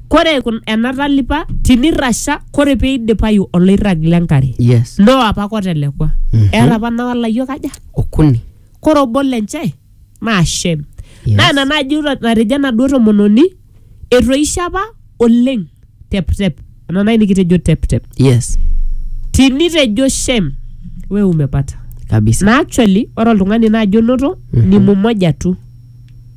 kore kun- ena talipa tinirrasha kore peidipayu oloirrag lenkare yes no apa kotelekua Mhm. eeta apa nawa layiok aja okuni kore obo lenche naa shem Yes. naa ina naaji ra- natejo enaduo tomononi etoishe apa oleng teptep ena nai nikitejo teptep yes tinitejo shem we umepata kabisa na actually ore oltung'ani naaji onoto ni mumoja tu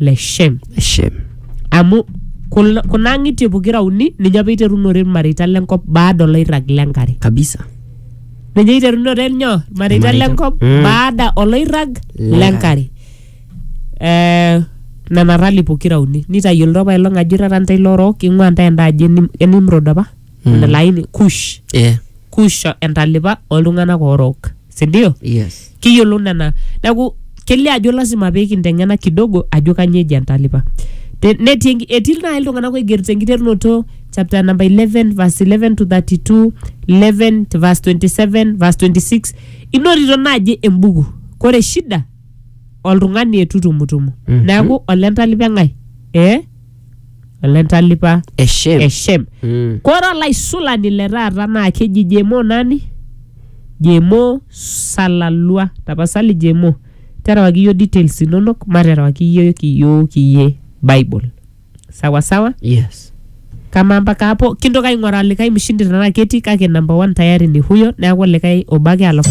le shem Shem. amu kul- kuna ang'itie pokira uni ninye apa iterunore irmareita lenkop baada oloirrag lenkare Kabisa. ninye iterunore nyoo irmareita Irmareita. lenkop Mm. baada oloirrag Lenkare. lenkare Eh, nena rali pokira uni nitayiolito apa ilong ajo irara ntae lorook ing'ua ntae enda aji enim- enimrod apa Mm. ena laini kush Eh. kush entalipa oltung'anak orook sindio yes kiyiolou nena neeku kelio ajo lasima pee kinteng'ena kidogo ajo kanyoo eji entalipa Te- netii enki- etii naaji iltung'anak oigerito enkiterunoto chapter number 11 verse 11 to 32 11 to verse 27 verse 26 inotito naaji embuku kore shida oltung'ani etutumutumu neeku olentalipa eng'ae eh? ele ntalipa eshem eshem Mm. kore olaisulani le taata naa keji jemo nani jemo salalua tapasali jemo terewaki iyio details inonok materewaki iyiook iyiook iyie bible sawa sawa yes kama mpaka hapo kintoki aing'oraa likae mshindi tenaa ketii kake number one tayari ni huyo neeku likae obo ake alafu